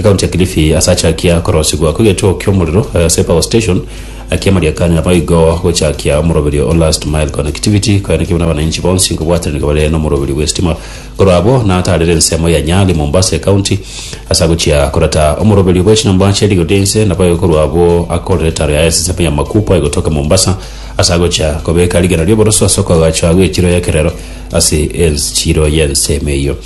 Ekaunti ya Kilifi ase achakia korosigwa kw'egechuo ki'omorero, Safe Hour Station, akia amariakanyo naboigo gochakia omoroberio o Last Mile Connectivity koenekia buna abananchi bonsi kobwatanigwa bare nomoroberio bw'esitima korwa abwo nataarera ensemo ya Nyali, Mombasa Ekaunti ase agochia koreta omoroberio bw'echinyomba chia rigodo inse naboigo korwa abwo akorera etaro yaye ase ensemo ya Makupa egotoka Mombasa ase agochia kobeka rigena ri'oboroso ase okoagachwa gw'echiro y'ekerero ase enchiro y'ensemo eyio.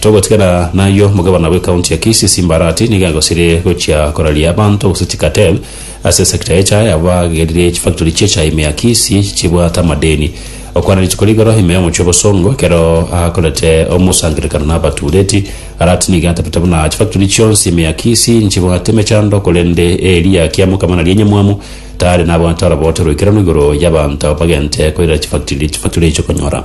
Togotigana nayio, Omogabana bwe County ya Kisii Simba Arati nigo agosirie gochia koraria abanto gose chicartel ase sector ya echae abo bagerire chifactory chi'echae ime ya Kisii chibwate amadeni. Okwana rituko rigoro ime y'omochie o Bosongo ekero akorete omosangererekano n'abatureti, Arati nigo atabete buna chifactory chionsi ime ya Kisii nchibwate emechando korende eria kiamokama naria enyamwamu tari nabwate orobote roikeranu igoro y'abanto bagente koirera chifactory echio konyora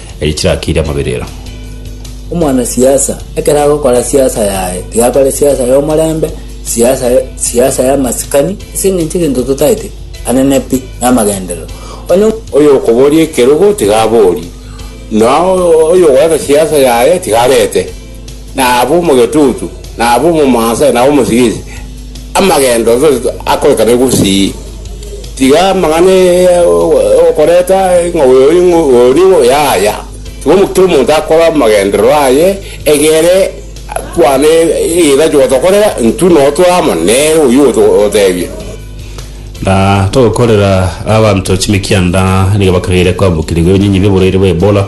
eria chirakiire amaberero. Omwanasiasa ekero agokora siasa yaye, tiga akore siasa y'omorembe, siasa, siasa y'amasikani, ase engencho egento totaete, anene pi, namagenderero. Onye Oyokoboria ekerogo tiga aborie, na oyogoeta siasa yaye tiga arete na abe omogetutu, na abe omomansa, na abe omosigisi, amagendo onsi onsi akoreka ne gusii. Tiga amang'ana ya okoreta ng'a oyo ore ng'o- oyo nigo yaya. Tiga omo- kera omonto akore amagenderero aye egere kwane egeita kigotokorera, intwe noo tore amo nere oyio oto- otebia. Na togokorera abanto chimikia nda nigo bakagera koambokerigwa ebinyinyi bi'oborwaire bwa Ebola,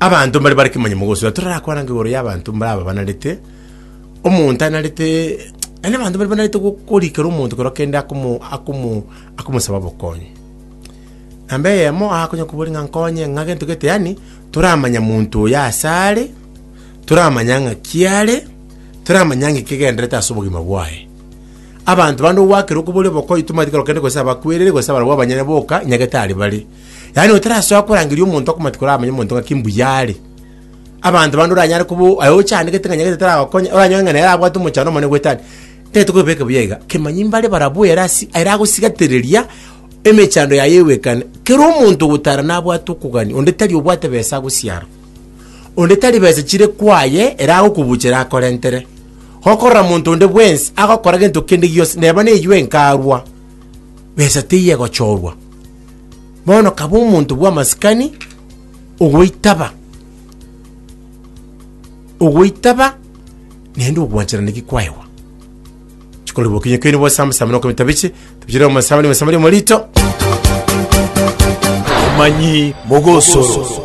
Abanto mbare bare kimanyemo gosira, torakwana ng'a igoro y'abanto mbare aba banarete omonto anarete yaani abanto mbare banarete go- korikera omonto kero kende akomo akomo akomosaba obokonyi. Namba eyemo akonya koboria ng'a nkonye ng'a gento gete yaani toramanya monto oyo ase are, toramanya ng'aki are, toramanya ng'a ki egendererete ase obogima bwaye. Abanto bande ogwakera okoboria obokonyi tomanyeti kero kende gose abakwerire gose abarabwo abanyene boka nyagete aria bare. yaani otarasoa korangeria omonto akomati koramanya omonto ng'aki mbuya are abanto bande oranyare kubo aye ochandegete ng'a nyagete taragokonya oranyoe ng'a nere abwate omochando omonene gwetani tete kobeke buya iga kemanyi mbare barabwo ere asi ere agosigatereria emechando yaye ewekane kero omonto ogotara nabwate okogania onde tari obwate besa agosiara onde tari besa chire kwaye ere agokobuchera akorentere gokorora monto onde bwensi agokora gento kende gionsi neba neywo enkarwa besa teiyo egochorwa Bono kaba omonto bw'amasikani ogoitaba, ogoitaba naende ogwancherana ki kwaegwa. Chikoro bokinyo keni bwa Sam Sam noko bitabiche, tabichire omo Sam ni Sam ni morito. Amanyi mogosoro.